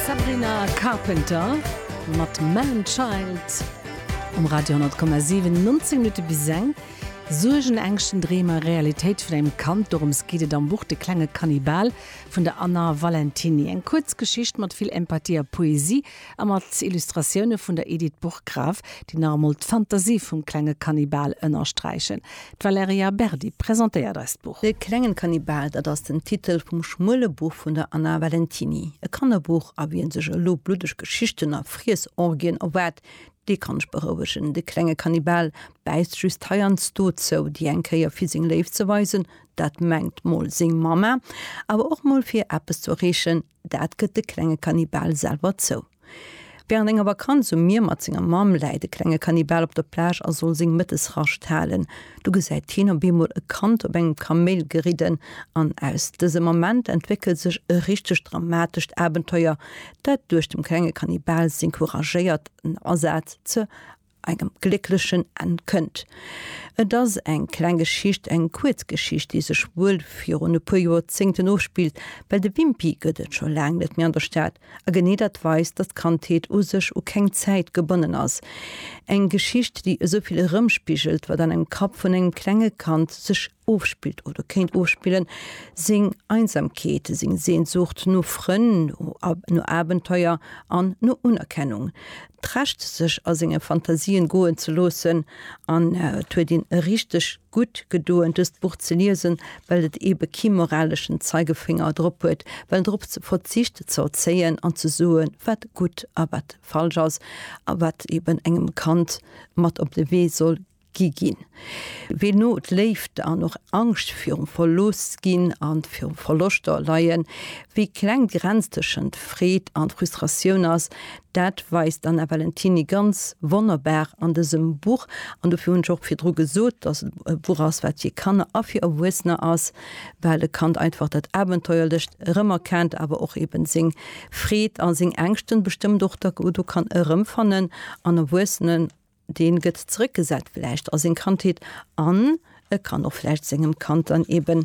Sabrina Carpenter mat Man Child um Radio 10,7. 19 Minutte bis eng. Suergen, Ängschten, Dreemer, Realitéit vun engem Kand, dorëms geet et am Buch De klenge Kannibal vun der Anna Valentiny. Eng kuerz Geschicht mat vill Empathie a Poesie. A mat Illustratioune vun der Edith Burggraf, déi nach emol d'Fantasie vum klenge Kannibal ënnersträichen. D'Valerija Berdi presentéiert eis d'Buch. De klengen Kannibal, dat ass den Titel vum schmuele Buch vun der Anna Valentiny. E Kannerbuch, a wien sech elo bluddeg Geschichten a Friessorgien erwaart, dee kann ech berouegen. De klenge Kannibal bäisst just heiansdo zou, déi eng Kéier fir seng Léift ze weisen, dat mengt mol seng Mamma, awer och mol fir eppes ze erreechen, Dat gëtt de klenge Kannibal selwer zou. Wärend enger Vakanz um Mier mat senger Mamm läit de klenge Kannibal op der Plage a soll seng Mëttesrascht halen. Du gesäit hien op eemol e Kand op engem Kaméil geridden an aus dësem Ament entwéckelt sech e richtegt dramatescht Abenteuer, dat duerch dem klenge Kannibal seng couragéiert Asaz ze engem glécklechen Enn kënnt. Et ass eng kleng Geschicht, eng kuerz Geschicht, déi sech wuel virun e puer Joerzéngten ofspillt, well de Wimpy gëtt et scho laang net méi an der Stad, a genee dat weist, datt d'Kandheet u sech u keng Zäit gebonnen ass. Eng Geschicht, déi esou vill erëmspigelt, wat an engem Kapp vun engem klenge Kand sech ofspillt oder kéint ofspillen, seng Einsamkeet, seng Sehnsucht no Frënn, no Abenteuer an no Unerkennung, d'Recht sech a senge Fantasien goen ze loossen. An et huet een richteg gutt gedoen dëst Buch ze liesen, well et ebe kee moraleschen Zeigefinger drop huet, well drop verzicht ze erzéien an ze soe wat gutt a wat falsch ass a wat eben engem Kand mat op de Wee soll gi ginn, wéi no d'Léift an och Angscht virum Verloossginn a virum Verloschter leien, wéi kleng d'Grenz tëschent Freed an Frustratioun ass, dat weist d'Anna Valentiny ganz wonnerbar an dësem Buch. An dofir hunn ech och virdru gesot, dass et e Buch ass, wat fir Kanner a fir Erwuessener ass, well e Kand einfach dat Abenteuerlecht erëmerkennt, awer och eben seng Freed a seng Ängschten bestëmmt och do kann erëmfannen an Erwuessenen. Deen gëtt zrëckgesat vläicht a seng Kandheet an e kann och vläicht sengem Kand dann eben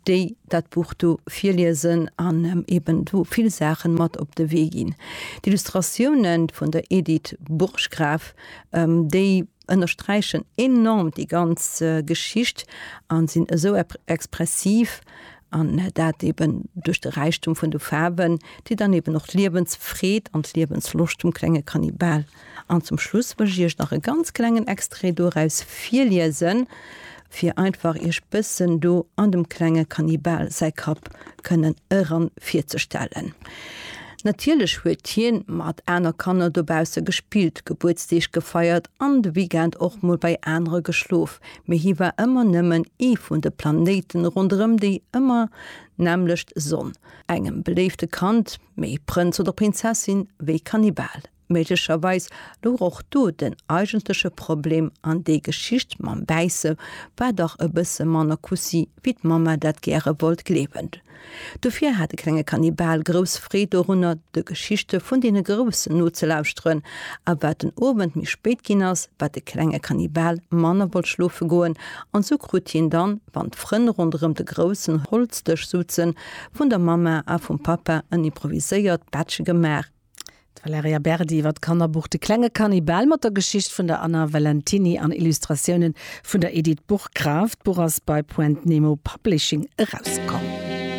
déi, dat Buch do virliesen an em eben do vill Saachen mat op de Wee ginn. D'Illustratiounen vun der Edith Burggraf, déi ënnersträichen enorm déi ganz Geschicht an sinn esou expressiv an dat eben duerch de Räichtum vun de Faarwen, déi dann eben och d'Liewensfreed an d'Liewensloscht vum klenge Kannibal An zum Schluss wëll ech iech nach e ganz klengen Extrait doraus virliesen, fir einfach iech bëssen do an dem klenge Kannibal säi Kapp kënnen eran virzestellen. Natierlech huet hien mat aner Kanner dobausse gespillt, Gebuertsdeeg gefeiert an de Weekend och mol bei anere geschlof, mee hie war ëmmer nëmmen ee vun de Planéiten ronderëm déi ëmmer nämmlecht Sonn. Engem beléifte Kand, méi Prënz oder Prinzessin wéi Kannibal. Méiglecherweis louch och do den eigentleche Problem an déi Geschicht mam Bäisse war dach e bësse manner Kussi wéi d'Mamma dat gäre wollt gleewen. Dofir hat de klenge Kannibal grouss Freed dorunner de Geschichte vun deene Groussen nozelauschteren a wat den Owend méi spéit ginn ass, wat de klenge Kannibal manner wollt schlofe goen an sou krut hien dann, wann d'Frënn ronderëm de groussen Holzdësch souzen, vun der Mamma a vum Pappa en improviséiert Bettche gemaach. D'Valerija Berdi iwwer d'Kannerbuch De klenge Kannibal mat der Geschicht vun der Anna Valentiny an Illustratiounen vun der Edith Burggraf. D'Buch ass bei Point Nemo Publishing erauskomm.